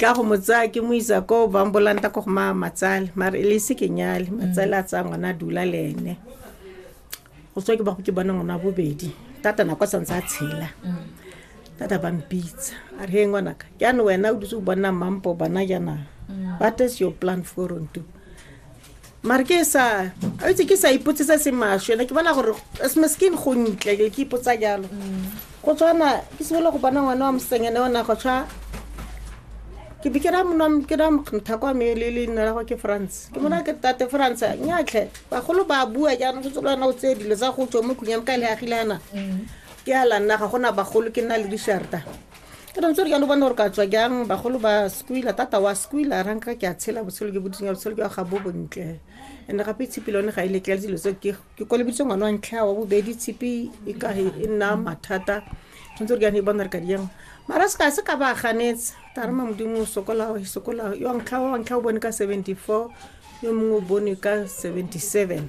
ka go mo tsaya ke mo isa ko ba mbolanta ko go ma matsale mare e le se ke nyale matsale a tsaya ngwana a dula le ene go tswa ke ba go ke bona ngwana wa bobedi tata nako a santse a tshela tata ba mpitsa a re he ngwanaka jaanong wena o dutse o bona mampo bona jaanang what is your plan for on to mare ke sa a itse ke sa ipotsisa se masho ena ke bona gore skin go ntle ke ipotsa jalo go tshwana ke simolola go bona ngwana wa mosengene ona go tshwa ke be ke ra ke ra mokgntha kwa me le leina la go ke france ke mona ke tate france nyatlhe bagolo ba bua jaanong go tsolo wena o tseye dilo tsa go tswa mo khunyang ka le agile ana ke a lanna ga gona bagolo ke nna le disharta ke dantse re jalo bone gore ka tswa jang bagolo ba skwila tata wa skwila ra nka ke a tshela botshelo ke boditsenya botshelo ke ga bo bontle and gape tshipi le one ga e letlele dilo tse ke kolebeditse ngwana wa ntlha wa bobedi tshipi e ka e nna mathata tshwanetse re jane e bona re ka dijang mara se ka se ka ba ganetse tare ma modimo o sokola o sokola yo ntlha wa ntlha o bone ka seventy four yo mongwe o bone ka seventy seven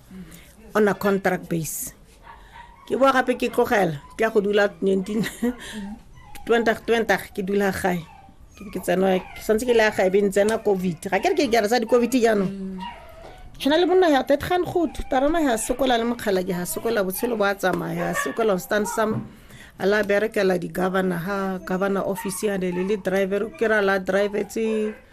on a contract base ke boa gape ke tlogela ke ya go dula 19 2020 ke dula gae ke tsena ke santse ke le ya gae be ntsena covid ga ke re ke kere sa di-covid jaanong go na le monna ya tetgan good tarana ya sokola le mokgala ke ya sokola botshelo bo a tsamaya ya sokola stand some a la berekela di-governor ha governor office ya le le driver ke ra la drivetse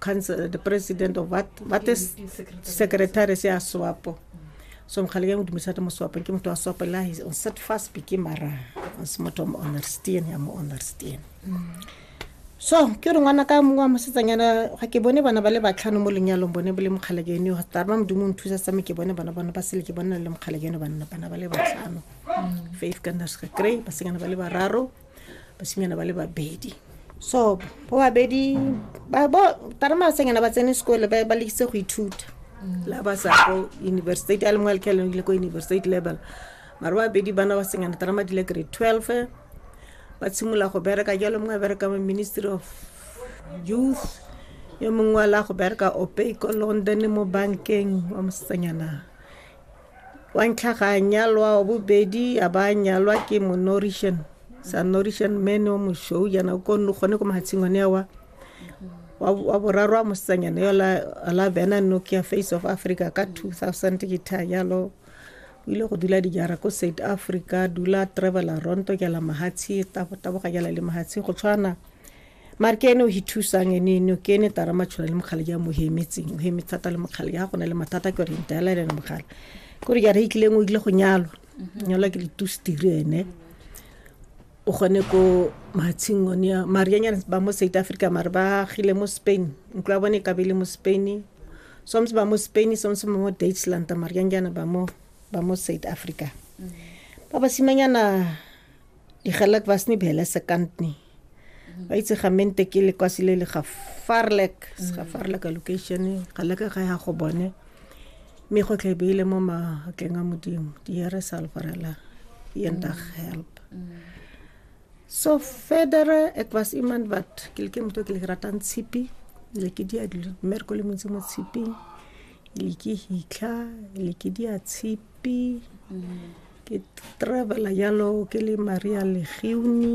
council, the president of what, what is secretary se a swapo so mokgale ke modumisa te moswapeng ke motho wa swapo la on set fast beke mara se motho mo understand ya mo understand so ke re ngwana ka mongwe wa mosetsanyana ga ke bone bana ba le batlhano mo lenyalong bone bo le mokgale ke ene tare ba modimo nthusa tsame ke bone bana bana ba sele ke bone le mokgale ke ene bana bana ba le batlhano faith ka nurse ka kry basenyana ba le bararo basimanyana ba le babedi so bo babedi tarema senyana ba tsene sekole ba lekise go ithuta mm. la ba sa ko university a le mongwe letlheleng le ko university level mare ba babedi bana ba senyana tarema dile grade twelve ba tshimolola go bereka jalo mongwe a bereka mo ministry of youth yo mongwe wa la go bereka ope ko london mo bankeng wa mosetsanyana wa ntlha ga a nyalwa wa bobedi a ba a nyalwa ke monorišan sa norišan mene o mošou jana o konne gone ko mahatsheng one wa wa wa boraro a mosetsanyana yo la la bena nokia face of africa ka 2000 ke tha jalo o ile go dula dijara ko south africa dula travela ronto ke la mahatshe taboga ke la le mahatshe go tshwana mare ke ene o ithusang ene ene ke ene tara matshola le mogale ja mo hemetseng o heme thata le mogale ja go na le mathata ke yone ntela le mogale ke re jara e tlileng o ile go nyalwa mhm. nyalwa ke ditustiri ene o gone ko matshing one ya mare ya nyana ba mo south africa mare ba gile mo spain ntlo ya bone e kabele mo spain somse ba mo spain somse ba mo deutschland mare ya nyana ba mo ba mo south africa mhm. ba basimanyana digelak ba sne bele sekantne ba itse ga mente ke lekwasi le le ga farlek mm. ga farlek location ga leka ga ya go bone mme go tlhe beile mo matleng a modimo diere salvarela yendag mm. help mm. so federe ek was iemand wat ke leke motho ke le ratang tshipi le ke dia dilo mer ko le montsi mo tshiping le ke hitlha le ke dia tshipi ke travela yalo ke le maria legiuni